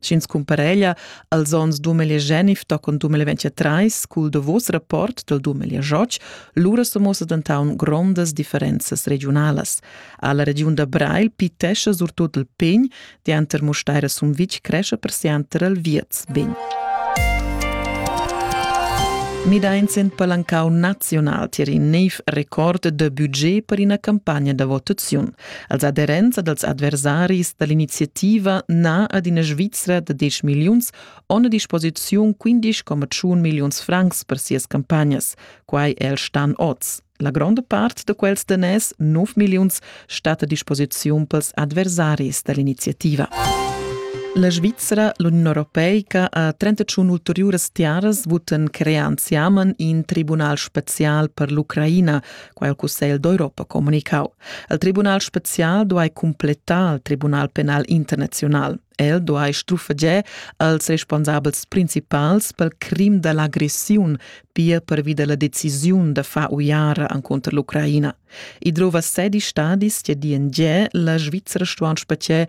Sch'ins cumpareglia als onns 2019 tochen 2023 cul davos rapport dal 2018, lura so muossa dentaun grondas differenzas regiunalas. Alla regiun da Breil pitescha surtut il pegn, dianter Musteira Sumvitg cresce persianter al Vierz Begn. Midains in palancau naziunal tier in neiv record de budget per ina campagna da votaziun. Als aderents dals adversaris da l'iniziativa na ad ina Svizra da 10 milliuns on a disposiziun 15,1 milliuns francs per sias campagnas. Quai è il Stan oz. La gronda part da quels daners, 9 milliuns, stat a disposiziun pels adversaris da l'iniziativa. La Svizra, l'Union Europeica, a 31 ulteriuras tiaras votan crear anziamen in tribunal special per l'Ucraina quai il Cussegl d'Europa comunicau. Il Tribunal special duai completar il Tribunal penal internaziunal. El duai strufeger als responsabels principals pel crim da l'agressiun, pia pervi da la decisiun da far uiara encontro l'Ucraina. I drova sedi stadis che di en ge la Svizzera stuan specie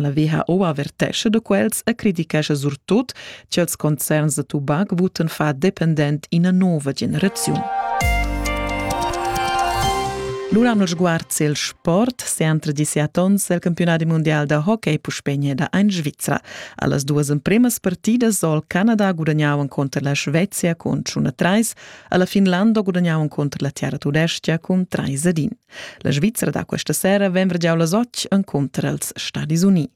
La WHO avertescha da quels e criticescha surtut ch'ils concerns da tubac votan fa dependent ina nova generaziun. Lura hanno sguard il sport se entre diciatons el campionati mondial da hockey puspegna da ein Svizra. Allas duas empremas partidas sol Canada guadagnavan conter la Svezia con 1-3, alla Finlanda guadagnavan conter la Terra Tudestia con 3-1. La Svizra da questa sera vembra giau las otg encunter els Stadis Uni.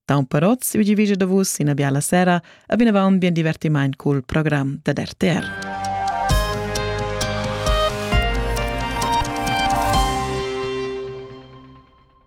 Taun per oz, ugi vige da vus ina biala sera, a vinavant bien divertiment col program da RTR.